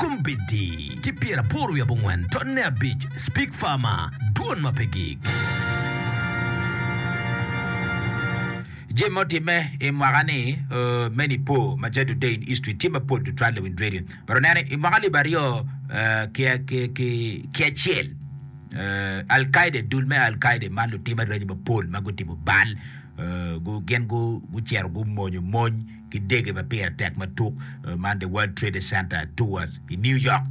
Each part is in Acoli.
Kombeddi ki pyera aboro wiye abongwen tonne abic Speak Farmer Dwon ma pe gik. Jami ma otimme i mwaka ni me Nipo ma ca Today in History tye mapol tutwal i Wind Radio. Myero wunen ni i mwaka alip aryo ki acel Al Kaida dul me Al Kaida man lutim aranyi mapol ma gutimo bal gin gucito gumonyo mony ki dege ma pire tek ma tuk man The World Trade Center Tower i New York,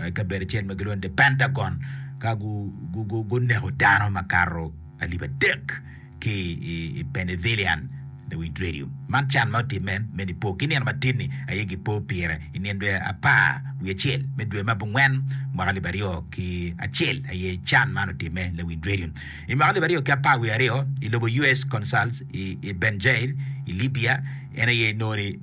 i kabedo acel ma gilwongo ni The Pentagon, ka guneko dano makato alip adek ki i Penythilian Lewidredio. Man can ma otimme me Nipo ki nino matin-ni aye gipo pire i nino dwe apar wiye acel me dwe me abongwen mwaka alip aryo ki acel aye can man otimme Lewidredio. I mwaka alip aryo ki apar wiye aryo, i lobo US. Consul i Benjail i Libya, en aye inongo ni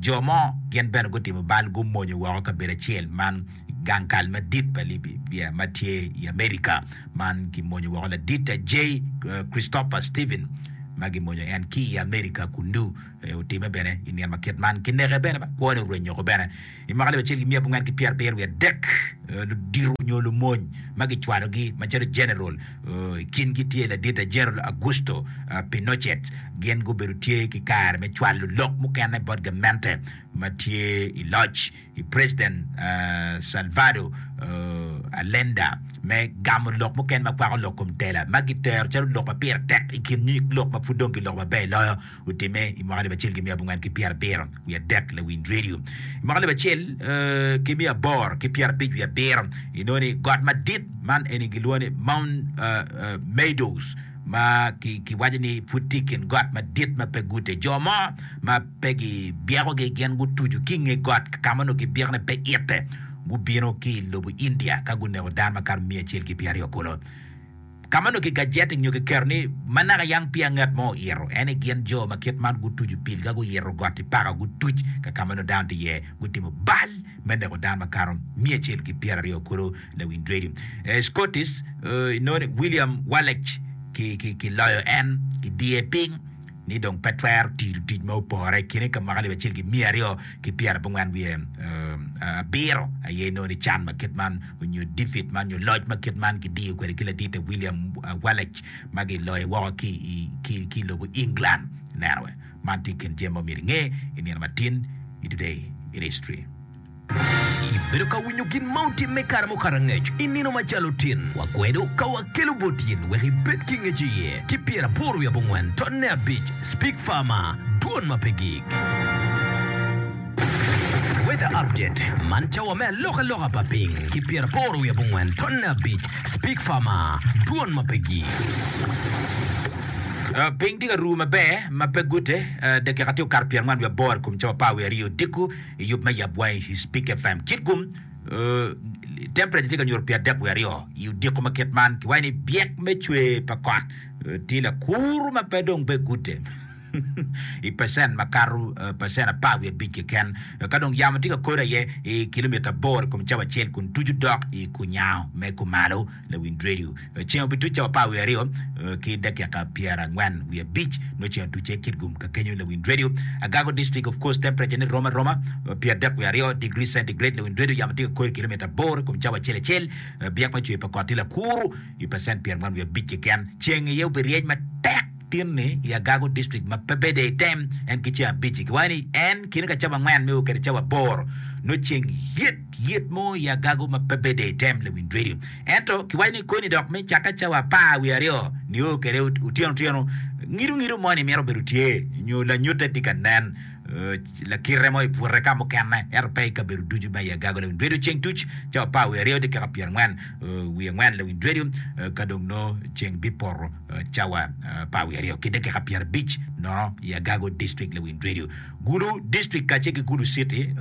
jo mo gin bene gutimo bal gumonyo woko kabedo acel man gang kal madit pa Libya ma tye i Amerika. Man kimonyo woko ladit J. Christopher Stephen ma gimonyo en ki i Amerika kunnu. Otimme bene i nino ma kit man. Kineke bene ba kwone orwenyo oko bene. I mwaka alip acel ki miya abongwen ki pyer abiro wiye adek, ludito nyo lumony ma gicwalogi macalo jeneral, i kingi tye ladite Jeneral Augusto Pinochet, gin gubedo tye ki kare me cwalo lok mukene bot gamente ma tye i loc i President Salvador Allenda me gamo lok mukene ma kwako lok kom tela ma gitero calo lok ma pire tek i kin nyig lok ma pud dong giloko maber loyo. Gutimme i mwaka alip acel ki miya abongwen ki pyerabiro wiye adek, Lawiny Radio, i mwaka alip acel ki miya aboro ki pyerabic wiye abiro, inongo ni got madit man eni gilwongo ni Mount Meadows ma kiwaco ni pud tye i kin got madit ma pe gute. Jo mo ma pe gibyekogi gin gutuco ki i nge got ka ma onongo kibyekone pe ite, gubino ki i lobo India ka guneko dano makato miya acel ki pyeraryo kulu. Ka ma onongo kigajeti nyo kiketo ni ma naka yam peya ngat mo oyito, ento gin jo ma kit man gutuco pilga, guyito got i paka, gutuc ka ka ma nongo dano tye iye, gutimo bal me neko dano makato miya acel ki pyera aryo kulu. Lawiny Dwedi, Scottish, inongo ni William Wallace, ki, ki, kiloyo en. Kidiye piny. ni dong pe twero tiyo tic ma opore i kine ka mwaka alip acel ki miya aryo ki pyera abongwen wiye abiro aye nongo ni can ma kit man onyo defeat man onyo loc ma kit man kidiyo kwede ki ladite William Wallace ma giloyo woko ki i lobo England neno wee man tye i kin jami ma omyero inge i nino matin i today in history. Ibedo ka winyo gin ma otim me kare mukato angec i nino macalo tin wa kwedo ka wa kelo bot in wek i bed ki ngec iye ki pyer aboro wi abongwen ton ne abic speak farmer dwon ma pe gig. Weather update man cawa me aloka loka pa ping ki pyer aboro wi abongwen ton ne abic speak farmer dwon ma pe gig. Piny tye ka ru maber ma pe gute dakika tye okato pyer angwen wi aboro i kom cawa apar wi aryo odiko. i yub me yabwa i Hispik FM. Kit gum, temperate tye ka nyuto pye adek wiye aryo i odiko ma kit man. Kiwaco ni byek me cwer pa kot tye lakur ma pe dong be gudde i pecent makato pecent apar wiye abic keken. Ka dong yamo tye ka kode aye i kilomita aboro i kom cawa acel kun tucu dok i kunyango me kumalo. Lawiny redio. Ceng obiduc cawa apar wiye aryo ki dakika pyera angwen wiye abic nyo ceng oducce Kitgum ka kenyo Lawiny redio. Agago district of course temperature ne rom aroma pyer dek wiye aryo degree centigrade Lawiny redio yamo tye ka kor ikilomita aboro ikom cawa acel acel byek me cwer pa kot tye lakuru ipecent pyer angwen wiye abic keken ceng iye obiryeny matek Tin ni i Agago District ma pe bede i tem en ki ceng abic-ci, kiwaco ni en kine ka cawa angwen me o kede cawa aboro nyo ceng yit yit mo i Agago ma pe bede i tem Lewinj Radio. Ento kiwaco ni koni dok me cakke cawa apar wiye aryo ni o kede otyeno otyeno ngido ngido mo ni mito bedo tye nyo lanyute tye ka nen lakite mo i bute ka mukene ento pe i kabedo ducu ma i Agago Lewinj Radio ceng tuc cawa apar wiye aryo dakika pyerangwen wiye angwen Lewinj Radio ka dong nongo ceng bipoto cawa pa awiye aryo ki dakika pyerabic nono i Agago District, Lewind Radio. Gulu District kacel ki Gulu City,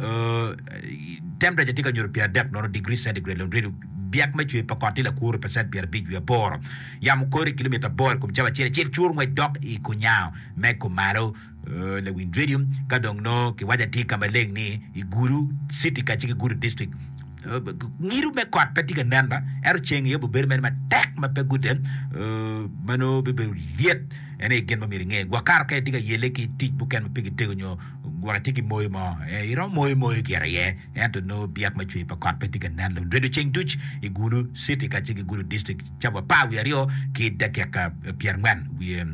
temperature tye ka nyuto pyeradek nono degree centigrade. Lewind Radio, byak me cwer pa kot tye lakuru pacent pyerabic wiye aboro. Yamo kore kilomita aboro i kom cawa acel acel, cur ngwec dok i kunyango me kumalo. Lawinj redio, Ka dong nongo kiwaco atye ka maleng ni i Gulu citi kacel ki Gulu district, ngido me kot pe tye ka nen ma ento ceng aye obibedo mere matek ma pe gude, ma nongo bibedo lyet. En aye gin ma myero inge. Gwok kato ka itye ka yelle ki tic mukene ma pe kitego nyo gwok itye ki moyo mo, iromo moyo moyo gire iye ento nongo byek me cwer pa kot pe tye ka nen. Lawinj redio, Ceng duc i Gulu citi kacel ki Gulu district cawa apar wiye aryo ki dakika pyerangwen wiye,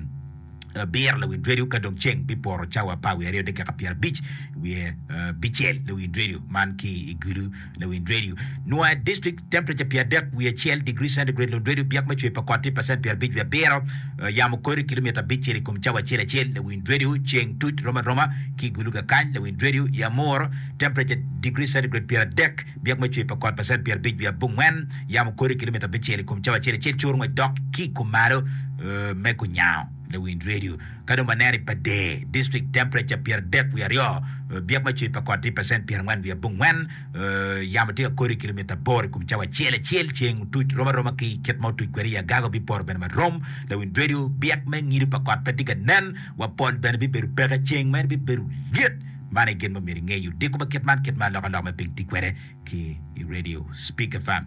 abiro lawi dwedi ka dong ceng bipoto cawa apar wiye aryo dakika pyerabic wiye bicel lawi dwedi man ki i gulu lawi dwedi nua district temperature pyeradek wiye acel degree centigrade lawi dwedi byak me cwer pa kot tye pacent pyerabic wiye abiro yamo kori kilomita abicel i kom cawa acel acel lawi dwedi ceng tuc romaroma ki gulu kakany lawi dwedi yamur temperature degree centigrade pyeradek Byek me cwer pa kot pa cent pyerabic wiye abongwen yamo kodi kilometer abicel i kom cawa acel acel cur ngwec dok ki i kom malo me kunyango lawind redio. Ka dong waneno i Pader district temperature pyeradek wiye aryo byek me cwer pa kot tye pa cent pyerangwen wiye abongwen yamo tye ka kodi kilometer aboro i kom cawa acel acel ceng otuc rom aroma ki kit ma otuc kwede i agaga obiporo bene ma rom lawind redio byek me ngido pa kot pe tye ka nen wa pol bene bibedo peke ceng mere bibedo lyet Man aye gin ma omyero ingey, odiko pa kit man kit ma alokaloka me piny ti kwede ki i radio, Speaker Fam.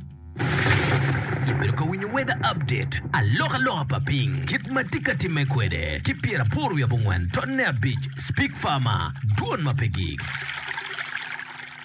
Ibedo ka winyo weather update, alokaloka pa piny kit ma ti ka timme kwede ki pyer apor wiye abongwen tonne abic, Speak Farmer, dwon ma pe gik.